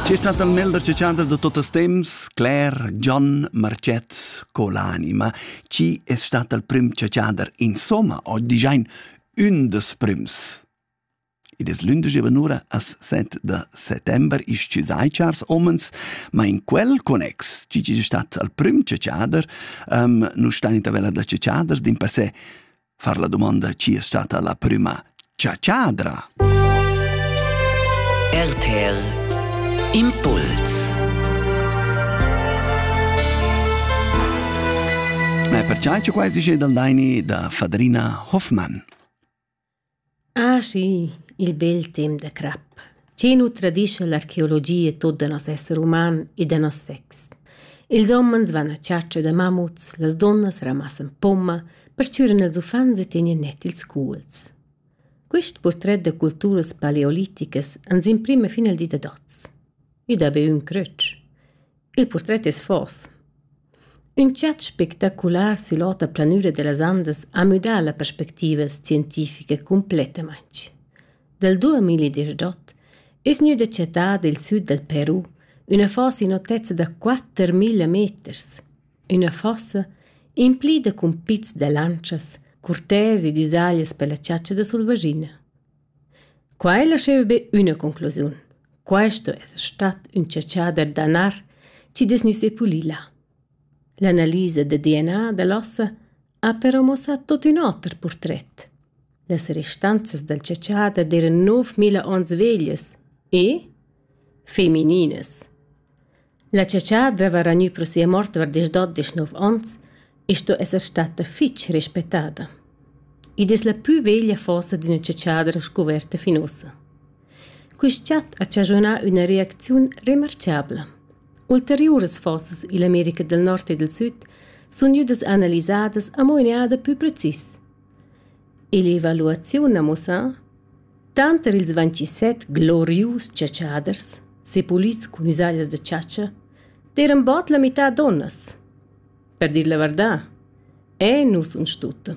Ci sta da melder che chanter da tuttas temps, Claire John Marcet co l'anima, ci è stata il prim che chanter insomma oggi giain un des prims. Id es l'ündesch evanura as 7 de settember isch ci sai chars omens, ma in quel connex, ci ci stat al prim ciader, um, nu stan in tabella da ciader, din per se far la domanda chi è stata la prüma ciaciadra. RTL Impuls Ma perciai che quai si dal daini da Fadrina Hoffmann. Ah sì, il bel temp da crap. Chi nu tradischa l'archeologia tuot da nos esser uman e da nos sex. Ils homens van a chatscha da mamuts, las dunnas ramassan pomma, perchüran ils uffants e tegnan net ils cuolls. Quist purtret da culturas paleoliticas ans imprima fin al di dad oz. I dà be ün crötsch. Il purtret es fors. Ün chat spectacular süll'ota planüra da las Andas ha müdà la perspectiva scientifica cumplettamaing. Dal 2018 es gnüda chattada i'l süd dal Peru üna fossa in otezza da 4000 meters. Üna fossa implida cun pizs da lantschas, curtesi ed üsaglias pella chatscha da sulvaschina. Quai lascheva be üna conclusiun. Questo es stat ün tschachà da danar chi dess gnü sepulì là. L'analisa da DNA da l'ossa ha però muossà tuot ün oter purtret. Las restanzas dal tschachà dad eran 9000 ons veglias e femininas. La chatschadra haveva ragniu pro sia mort var diesch-dot, diesch-nov onns e sto esser stata fitg respectada. Id es la pü veglia fossa d'üna chatschadra scuverta fin ussa. Quist chat ha chaschunà üna reacziun remarchabla. Ulteriuras fossas ill'America del Nord e del Süd sun gnüdas analisadas amo in eada pü precis. E l'evaluaziun ha muossà Tanter ils vintisset glorius chatschaders, sepulits cun üsaglias da chatscha, d'eiran bod la mità dunnas. Per dir la vardà, e nus uns tutta.